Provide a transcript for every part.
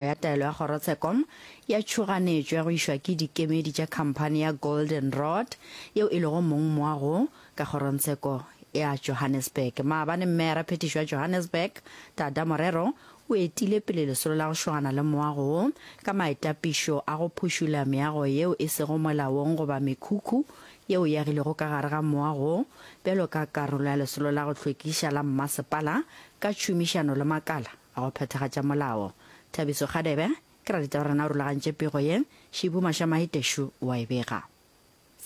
ya taelo ya kgorotsheko ya tšhoganetšo ya go išwa ke dikemedi tša khamphani ya Golden Rod yeo e lego mong moa go ka kgorongtsheko ya Johannesburg. Maabane mme ya raphethišo ya Johannesburg, Tada Morero, o etile pele lesolo la go šogana le moa go ka maetapišo a go phušula meago yeo e sego molaong goba mekhukhu yeo e agilwego ka gare ga moa go bjalo ka karolo ya lesolo la go hlwekiša la mmasepala ka tšhomišano le makala A go phethagatša molao. Thabiso Kgadebe, Ke ra ditaba rena o rulagantše pego ye, Shibu Mashamahi Teshu wa e bega.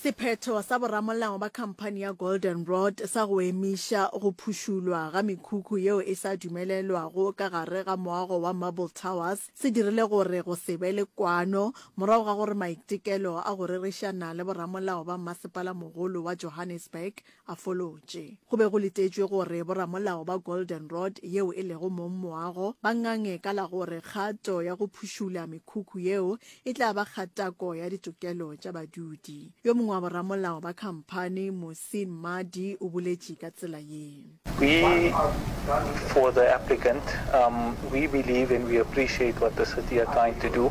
Sephetho sa boramolao ba khamphani ya Golden Rod sa go emiša go phušulwa ga mekhukhu yeo e sa dumelelwago ka gare ga moago wa Marble Towers se dirile gore go se be le kwano morago ga gore maitekelo a go rerišana le boramolao ba mmasepala mogolo wa Johannesburg a folotše. Go be go letetšwe gore boramolao ba Golden Rod yeo e lego mong moago ba ngange ka la gore kgato ya go phušula mekhukhu yeo e tla ba kgatako ya ditokelo tša badudi. Yo mongwe wa boramolao ba khamphani, Muhsin Mmadi o boletše ka tsela ye. We, for the applicant, um, we believe and we appreciate what the city are trying to do.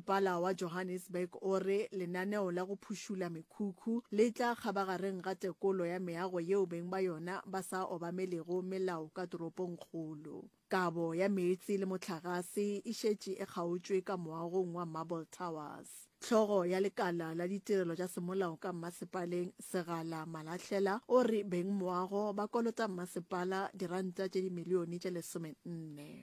Pala wa Johannesburg o re lenaneo la go phušula mekhukhu le tla kgabagareng ga tekolo ya meago yeo beng ba yona ba sa obamelego melao ka toropongkgolo. Kabo ya meetse le mohlagase e šetše e kgaotšwe ka moagong wa Marble Towers. Hlogo ya lekala la ditirelo tša semolao ka mmasepaleng, Segala Malahlela, o re beng moago ba kolota mmasepala diranta tše dimilione tše lesomenne.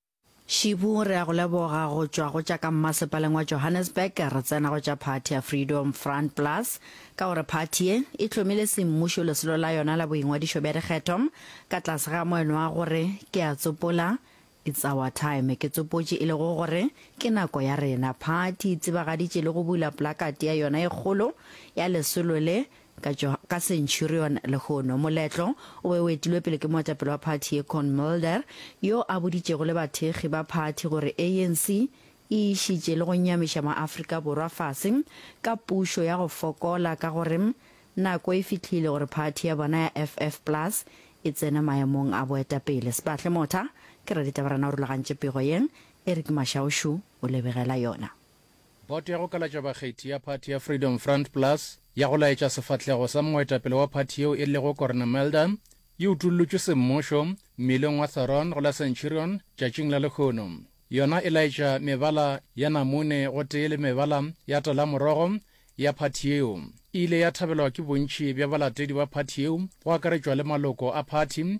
Shibu, re ya go leboga go tšwa go tša ka mmasepaleng wa Johannesburg re tsena go tša phathi ya Freedom Front Plus ka gore phathi ye e hlomile semmušo lesolo la yona la boingwadišo bja dikgetho ka tlase ga moeno wa gore ke a tsopola It's our time. Ke tsopotše e lego gore ke nako ya rena. Phathi e tsebagaditše le go bula plakati ya yona e kgolo ya lesolo le Ka tšo ka Centurion lehono. Moletlo o be o etilwe pele ke moetapele wa phathi ye Con Mulder, yo a boditšego le bathekgi ba phathi gore ANC e išitše le go nyamiša maAfrika Borwa fase ka pušo ya go fokola ka gore nako e fihlile gore phathi ya bona ya FF Plus e tsene maemong a boetapele. Sbahle Motha ke Raditabarana o rulagantše pego ye, Eric Mashaušu o lebegela yona. Boto ya go kalatša bakgethi ya phathi ya Freedom Front Plus ya go laetša sefahlego sa moetapele wa phathi yeo e lego Corne Mulder e utollotšwe semmušo mmileng wa Thoron go la Centurion tšatšing la lehono, yona e laetša mebala ya namune gotee le mebala ya talamorogo ya phathi yeo. E ile ya thabelwa ke bontši bja balatedi ba phathi yeo go akaretšwa le maloko a phathi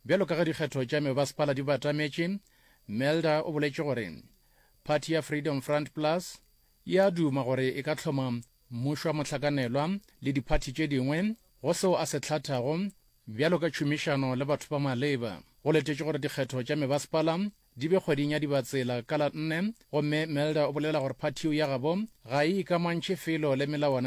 Bjalo ka ge dikgetho tša mebasepala di batametše, Melder o boletše gore phathi ya Freedom Front Plus e a duma gore e ka hloma mmušo wa mohlakanelwa le diphathi tše dingwe go seo a se hlathago bjalo ka tšhomišano le batho ba maleba. Go letetšwe gore dikgetho tša mebasepala di be kgweding ya Dibatsela ka la nne gomme Melder o bolela gore phathi yeo ya gabo ga e ikamantšhe felo le melawana